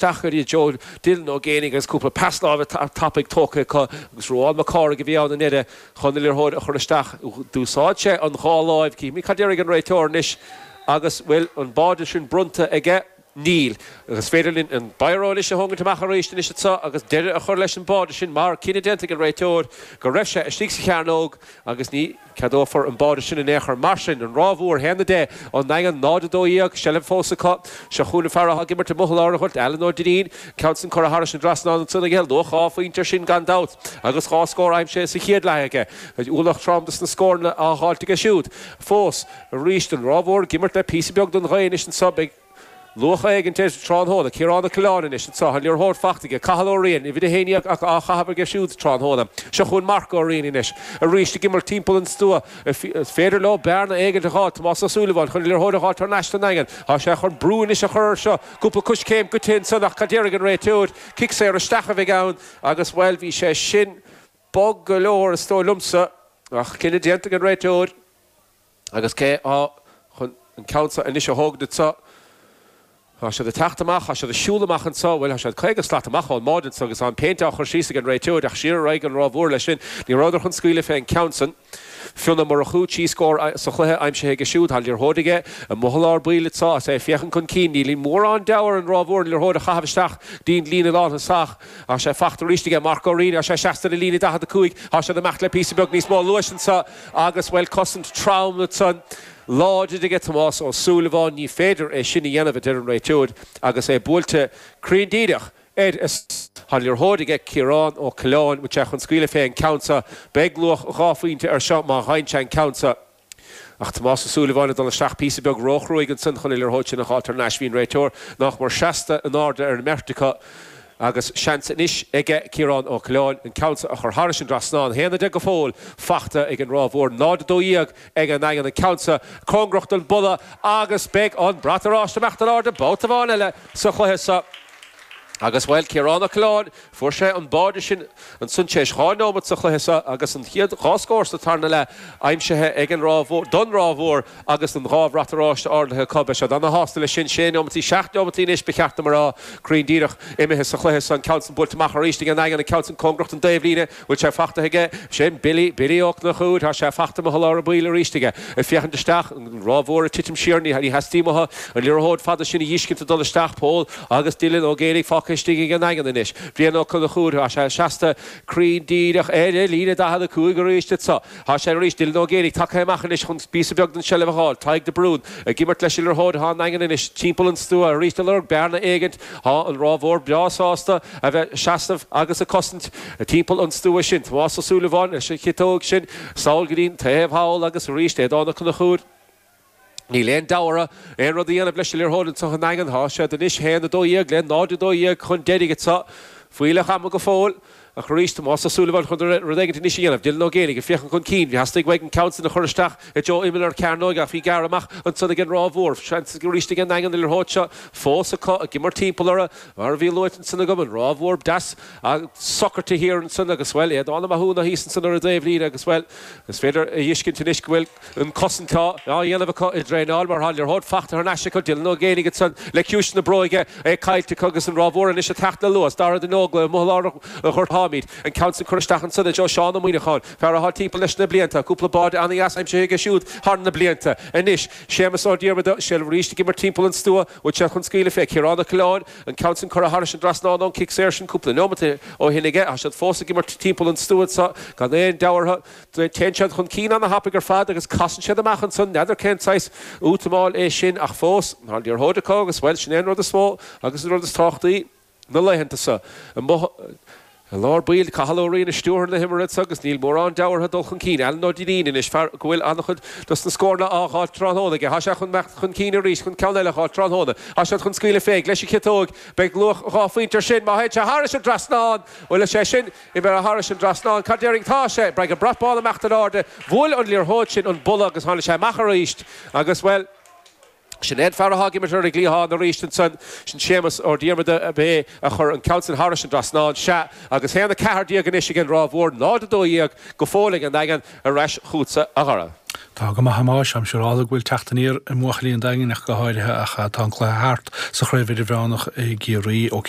deacair i dtreo Dylan Ó Géibheannaigh agus cúpla pas láimhe tapaidh tógtha acu agus Ruán Mac Cárthaigh a bhí ann i ndeire chun an liathróid a chur isteach. D'úsáid sé an dhá láimh. Cífimid cad déarfaidh an réiteoir anois agus bhfuil an báide sin bronnta aige. Níl. Agus is féidir linn an Biro anois a thógaint amach arís anois anseo agus deire a chur leis an báide sin mar cinneadh déanta ag an réiteoir go raibh sé istigh sa chearnóg agus ní Ceadófar an báide sin in aon chor mar sin. An Ráth Mhór 1-10 An Daingean 0-12 Seilbh fós acu. Seo chugainn an fear atá ag imirt i mbuthal lár an ghoirt, Alan Ó Duinnín. Ceann san curtha thairis an dtrasnán ansan aige. Luach dhá phointe ar sin gan dabht agus dhá scór aimsithe sa chéad leath aige. Ualach trom dos na scóranna atá á dháilt aige siúd fós. Arís an Ráth Mhór ag imirt le píosa beag don ghaoth anois anso. Beidh. Luach éigint leis tráthnóna. Ciarán Ó Coileáin anois is tá an liathróid fachta aige. Cathal Ó Riain, uimhir a haon dhéag, á chaitheamh aige siúd tráthnóna. Seo chugainn Mark Ó Riain anois. Arís ag imirt timpeall an stua. Is féidir leo bearna éigint a dh'fháil. Tomás Ó Súilleabháin chun an liathróid a dh'fháilt thar n-ais don nDaingean. Tá sé chun brú anois a chur air seo. Cúpla coiscéim goidte ansan ach cad déarfaidh an réiteoir? Cic saor isteach a bheidh ann agus, bhuel, bhí sé sin bog go leor is dóigh liomsa ach cinneadh déanta ag an réiteoir. Agus cé atá chun an ceann seo anois a thógaint anseo? Tá siad ag teacht amach, tá siad ag siúl amach anseo, bhuel, tá siad caoga slat amach ón mbáide anseo agus tá an péint á chur síos ag an réiteoir ach siar a raghaidh an Ráth Mhór leis sin. Ní rabhadar chun scaoileadh fé an ceann san. Fionn Ó Murchú trí scór sa chluiche aimsithe aige siúd, tá an liathróid aige i mbuthal lár baill anseo agus é ag féachaint chun cinn. Níl mórán deabhaidh ar an Ráth Mhór an liathróid a chaitheamh isteach dtí'n líne lán-thosach ach tá sé fachta arís aige Mark Ó Riain agus é seasta le líne 45. Tá siad ag imeacht le píosa beag níos mó luais anseo. Agus, bhuel, cosaint trom ansan láidir aige Tomás Ó Súilleabháin, ní féidir é sin a dhéanamh, a deir an réiteoir agus é buailte cruinn díreach air is tá an liathróid aige, Ciarán Ó Coileáin, agus é chun scaoileadh fé an ceann seo. Beidh luach dhá phointe ar seo má dheineann sé an ceann seo. Ach Tomás Ó Súilleabháin ag dul isteach píosa beag róchruaigh ansan chun an liathróid sin a dh'fháilt thar n-ais. Bhí an réiteoir nach mór seasta in airde ar an mbeirt acu. Agus seans anois aige Ciarán Ó Coileáin an ceann seo a chur thairis an dtrasnán. 1-10 go fóill fachta ag an Ráth Mhór, 0-12 ag an Daingean. An ceann seo cóngarach don bpola agus beidh an brat oráiste ag imeacht in airde babhta amháin eile sa chluiche seo. Agus, bhuel, Ciarán Ó Coileáin, fuair sé an báide sin. Ansan tar éis dhá nóimeat sa chluiche seo agus an chéad dhá scór sa tarna leath aimsithe ag an Ráth Mhór, don Ráth Mhór agus an dhá bhrat oráiste ardaithe acu. Beidh siad an-shásta leis sin. Sé nóimeataí, seacht nóimeataí anois ba cheart dom a rá, cruinn díreach, imithe sa chluiche seo. An ceann san buailte amach arís ag an Daingean, an ceann sin cóngarach don dtaobhlíne. Bhfuil sé fachtaithe aige? Sin Billy, Billy Ó Conchúir. Tá sé fachta, i mbuthal lár baill arís aige. Ag féachaint isteach, an Ráth Mhór ag titim siar. Ní theastaíonn uathu an liathróid fada sin a dh'fheiscint ag dul isteach. Pól. Agus Dylan Ó Géibheannaigh fágtha istigh ag an Daingean anois, Brian Ó Conchúir, tá sé seasta cruinn díreach ar líne 45 arís anseo. Tá sé arís, Dylan Ó Géibheannaigh tagtha amach anois chun píosa beag den tseilbh a fháil. Tadhg de Brún ag imirt leis an liathróid. Tá an Daingean anois timpeall an stua arís ag lorg bearna éigint. Tá an Ráth Mhór breá sásta a bheith seasamh agus ag cosaint timpeall an stua sin. Tomás Ó Súilleabháin leis an chiotóig sin sall go dtí'n taobh thall agus arís Aodán Ó Conchúir. Níl aon deabhadh orthu aon rud a dhéanamh leis an liathróid ansan an Daingean. Tá siad anois 1-12 le 0-12 chun deiridh anseo. Fuílleach ama go fóill. Ach arís, Tomás Ó Súilleabháin chun rud éigin anois a dhéanamh. Dylan Ó Géibheannaigh ag féachaint chun cinn. Theastaigh uaidh an ceann sin a chur isteach i dtreo imeall na cearnóige ach í gearrtha amach ansan ag an Ráth Mhór. Seans arís ag an nDaingean an liathróid seo fós acu ag imirt timpeall orthu. Mar a bhí luaite ansan agam, an Ráth Mhór deas socair thiar ansan agus, bhuel, Aodán Ó Mathúna thíos ansan ar an dtaobh líne agus, bhuel, is féidir a thuiscint anois go bhfuil An cosaint á dhéanamh acu i dtraenáil mar tá an liathróid fachta thar n-ais acu. Dylan Ó Géibheannaigh ansan le ciumhais na bróige, é caillte acu agus an Ráth Mhór anois ag teacht le luas. Dara de Nógla i mbaol ár gcuirfeáimid an ceann san curtha isteach ansan i dtreo Sheán Ó Muíneacháin, fear atá timpeall leis na blianta. Cúpla báide ana-dheas aimsithe aige siúd thar na blianta. Anois Séamus Ó Diarmada, seilbh arís ag imirt timpeall an stua, bhfuil sé chun scaoileadh fé Ciarán Ó Coileáin? An ceann san curtha thairis an dtrasnán ón cic saor sin cúpla neomat ó shin aige, tá siad fós ag imirt timpeall an stua gan aon deabhadh orthu. Téann siad chun cinn ana thapaidh ar fad agus casann siad amach ansan, n'fheadar cén saghas útamáil é sin ach fós tá an liathróid acu agus bhuel sin é an rud is mó agus an rud is tábhachtaí na laethanta seo. Amuigh i lár baill Cathal Ó Riain ina stiúrthóir na himeartha so agus níl mórán deabhadh orthu dul chun cinn Alan Ó Duinnín anois fear go bhfuil an-chuid dos na scóranna á dh'fháil tráthnóna aige. Tá sé chun teacht chun cinn arís chun ceann eile a dh'fháil tráthnóna. Tá siad chun scaoileadh fé. Leis an chiotóg beidh luach dhá phointe ar sin. Má théann sé thairis an dtrasnán bhfuil sé sin. Imithe thairis an dtrasnán, go deimhin tá sé? Braithim an brat bán ag imeacht in airde. Bhuail an liathróid sin an balla agus tháinig sé amach arís. Agus, bhuel, sin é an fear atá ag imirt ar an gcliathán arís ansan. Sin Séamus Ó Diarmada. Ab é a chuir an ceann sin thairis an dtrasnán? Sea. Agus haon a ceathair déag anois ag an Ráth Mhór, 0, 12 go fóill ag an nDaingean. Ar ais chugatsa, a Dhara. Tá go maith a Thomáis. Táim siúráilte go bhfuil teacht aniar i mbuachaillí an Daingin ach go háirithe ach tá an cluiche thart sa Chraobh Idirmheánach i gCiarraí. OK.